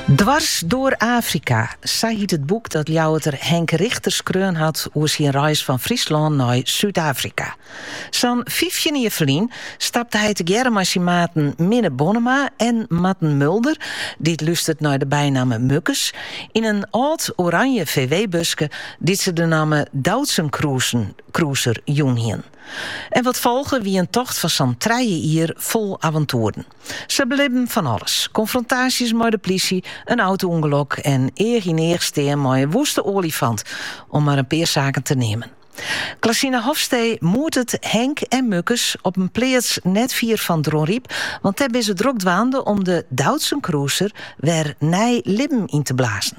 Dwars door Afrika, sa hiet it boek dat Ljouwerter Henk Richter skreaun hat oer syn reis fan Fryslân nei Súd-Afrika. Sa'n fyftjin jier ferlyn stapte hy tegearre mei syn maten Minne Bonnema en Marten Mulder, dy't lústert nei de bynamme Mukkes, yn in âld oranje VW-buske dy't se de namme Doutzen Cruiser jûn hiene. En wat folge wie in tocht fan sa'n trije jier fol avantoeren. Se belibben fan alles, konfrontaasjes mei de plysje, in auto-ûngelok en each-yn-each stean mei in wûste oalifant, om mar in pear saken te neamen. Klasina Hofstee moetet Henk en Mukkes op in pleats net fier fan Dronryp, want dêr binne se drok dwaande om de Doutzen Cruiser wer nij libben yn te blazen.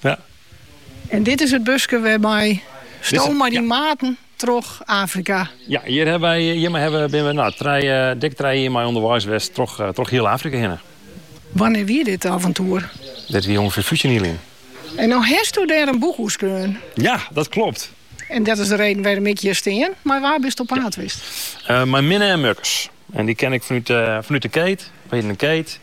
Ja. En dit is it buske wêrmei sto mei dyn maten troch Afrika. Ja, hjir hawwe wy, hjirmei hawwe we, binne we nou, trij, eh, dik trije jier mei ûnderweis west troch, eh, troch hiel Afrika hinne. Wannear wie dit avontoer? Dit wie ûngefear fyftjin jier lyn. En no hasto dêr in boek oer skreaun. Ja, dat klopt. En dat is de reden wêrom't ik hjir stean. Mar wa bist op paad west? Uh, mei Minne en Mukkes. En dy ken ik fanút, uh, fanút de keet. We hiene in keet.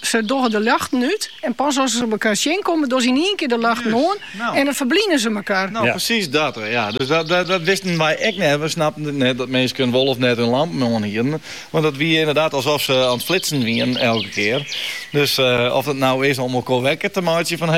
Se dogge de ljochten út en pas as se mekaar tsjinkomme, dogge se yn ien kear de ljochten oan en dan ferblynje se mekaar. No, presys dat. Ja, dus dat wisten wy ek net. We snapten it net dat minsken wol of net hun lampen oan hiene, want dat wie inderdaad alsof se aan it flitsen wiene elke kear. Dus of it nou is om elkoar wekker te meitsjen fan